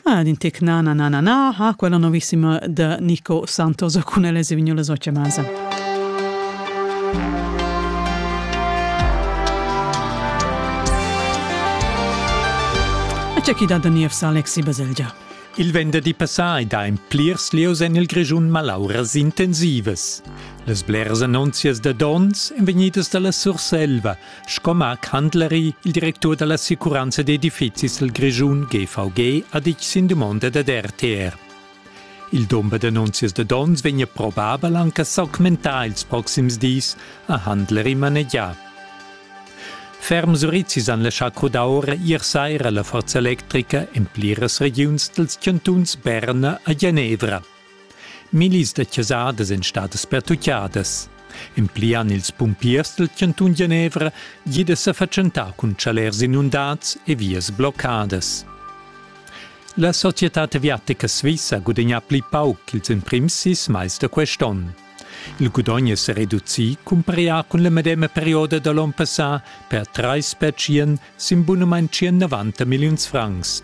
Ah, din tic nana na na na, ha quella novissima da Nico Santos cun elle Sevignola Sociamasa. C'è chi da Daniev Alexi Baselgia. Il venderdi passà da en plirs lieus en il Grischun malauras intensivas. Las bleras annunzias da dons èn vegnidas da la Surselva, Sco Marc Handleri, il directur dall'assicuranza d'edifizis del Grischun GVG, ha ditg sin dumonda dad RTR. Il dumber d'annunzias da dons vegn probabel anche s'augmentar ils proxims dis, ha Handleri manegià. Ferm Surizis han laschà crudar ora ier saira la forza electrica en pliras regiuns dals chantuns Berna e Genevra. Millis da chasadas èn stadas pertutgadas. En pli han ils pumpiers dal chantun Genevra gì da sa fatschentar cun chalers inundads e vias bloccadas. La società aviatica svissa ha gudagnà pli pauc ch'ils emprims sis mais da quest onn. Il gudogn è sa reducì cumpareglià cun la medema perioda da l'onn passà per trais petschian sin bunamain 190 milliuns francs,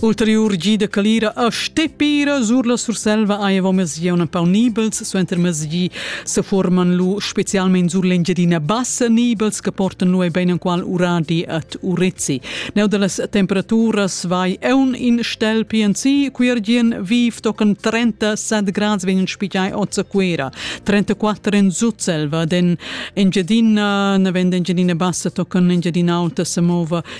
Ulteriur gi da calira a Stepira sur la Surselva aiva mesieu empau nibels, suenter mesi se forman lu specialment sur l'Engiadina bassa nibels che portan lu ein enqual uradi at Urezzi. Neu dallas temperaturas vai eun in stel PNC, quiergien viv tocan 37 grad vegnan spigiai ot Quera, 34 in Sutselva, den Engiadina, ne vend Engiadina bassa tocan Engiadina alta se mova